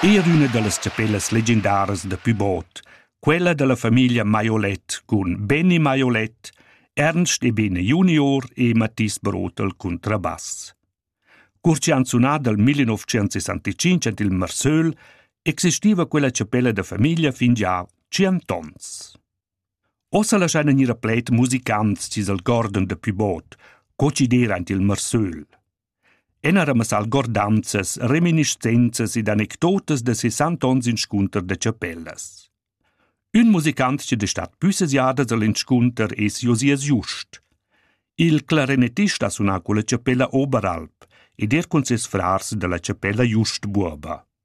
Eir üna da las chapellas legendaras da Pybot, quella da la famiglia Maiolet cun Benny Maiolet, Ernst Ebene junior e Mathis Brotel cuntrabass. Cur chi han sunà dal 1965 ant il Marsöl, existiva quella chapella da famiglia fin già tschient ons. Ossa laschaina gnir a pled musicants chi's algordan da Pybot, co chi d'eira ant il Marsöl. Enaremas algordanzas, reminiscenzas ed anecdotas da sesant onns inscunter da chapellas. Ün musicant chi da stat püssas jadas al inscunter es Josias Just. Il clarinettist ha sunà culla chapella Oberalp ed er cun ses frars da la chapella Just Buoba.